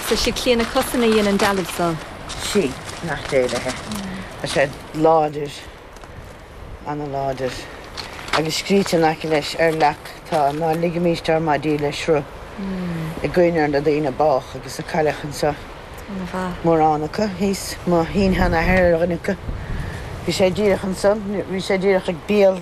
So 'sí Clíona Cussen a dhein an dealbh so? Sí, nach diail é. Tá sé láidir, an-láidir. Agus scríte in aice leis ar leac tá, 'Ná ligimís ár maidí le sruth'. I gcuimhne ar na daoine a bádh agus a cailleadh anseo. Mórán acu thíos. Mo shin-sheanathair ar dhuine acu. Bhí sé díreach ansan, bhí sé díreach ag béal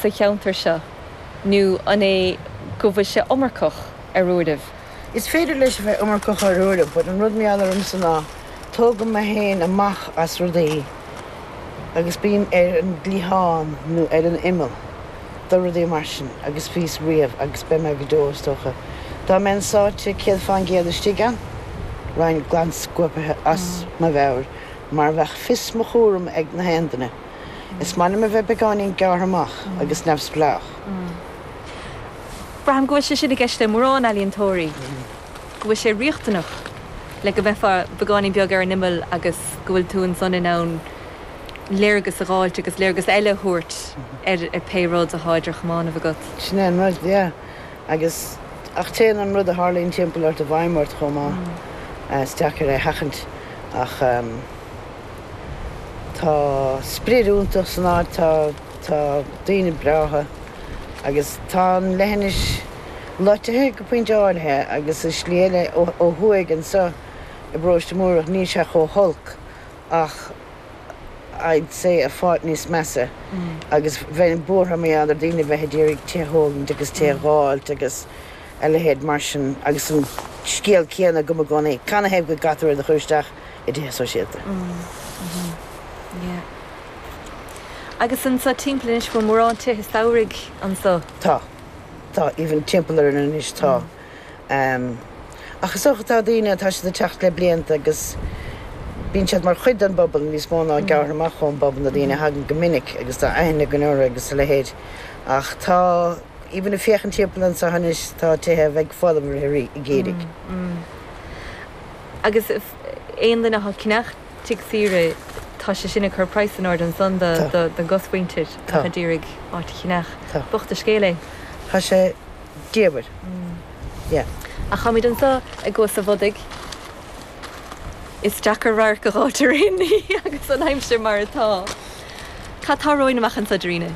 sa cheanntar seo, nó an é go bhfuil sé iomarcach ar uairibh? Is féidir leis a bheith iomarcach ar uairibh but an rud mar gheall ormsa ná tógaim mé féin amach as rudaí agus bím ar an gcliathán nó ar an imeall do rudaí mar sin agus bhíos riamh agus beidh mé go deo is dócha. Dá mbeinn sáite céad fán gcéad istigh ann, bheinn glan scuaipithe as mo mheabhair mar bheadh fios mo chúraim ag na haon duine. Is maith liom a bheith beagáinín gearrtha amach agus neamhspleách. Braithim go bhfuil sé sin i gceist le mórán ealaíontóirí, go bhfuil sé riachtanach le go mbeifeá beagáinín beag ar an imeall agus go bhfuil tú ansan in ann léargas a dh'fháilt agus léargas eile a thabhairt ar pé rud athá idir chamánaibh agat. Sin é an rud, yeah. Agus, ach téann an rud a tharlaíonn timpeall ort i bhfeidhm ort chomh maith. Is deacair é a sheachaint ach. Tá sprid iontach san áit, tá, tá daoine breátha agus tá an leithinis loitithe go pointe áirithe agus i slí eile ó, ó thuaidh anso i bParóiste Múrach níl sé chomh holc ach I'd say a pháirt níos measa agus bheinn buartha maidir le daoine a bheith a d'iarraidh tigh a thógaint agus tigh a dh'fháilt agus a leithéid mar sin agus an scéal céanna agam i gcónaí, canathaobh go gcaitear iad a chur isteach. i dtithe sóisialta. Mm, mhm, yeah. Agus annso timpeall anois bhfuil mórán tithe samhraidh annso? Tá. Tá, even timpeall orainn anois tá. Ehm, ach is dócha tá daoine, tá siad ag teacht le blianta agus bíonn siad mar chuid den bpobal níos mó ná gearrtha amach ón bpobal na daoine a thagann go minic agus tá aithne againn orthu agus a leithéid. Ach tá, even ag féachaint timpeall annso anois tá tithe a bheidh folamh i rith an gheimhridh. Mm, mm. Agus aon duine atá ag ceannach tigh saoire tá sé sin ag cur praghas in airde ansan do don gcosmhuintir atá ag iarraidh áit a cheannach. Bocht an scéal é. Tá sé diamhair. Yeah. Ach táimíd anso i gCuas a' Bhodaigh. Is deacair radharc a dh'fháilt ar aon ní agus an aimsir mar atá. Cad tá romhainn amach anso, Darina?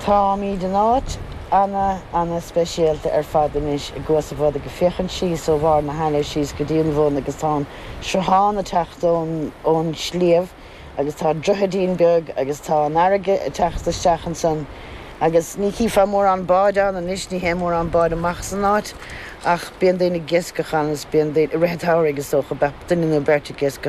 Táimíd in áit ana ana speisialta ar fad anois i gCuas a' Bhodaigh ag féachaint síos ó bharr na haille síos go dtí an bhun agus tá an sruthán a' teacht ón ón sliabh agus tá droichidín beag agus tá an fharraige a' teacht isteach ansan agus ní chífeá mórán báid ann anois, ní théann mórán báid amach san áit ach bíonn daoine ag iascach ann agus bíonn daoine, i rith a' tsamhraidh is dócha, bheadh duine nó beirt ag iascach.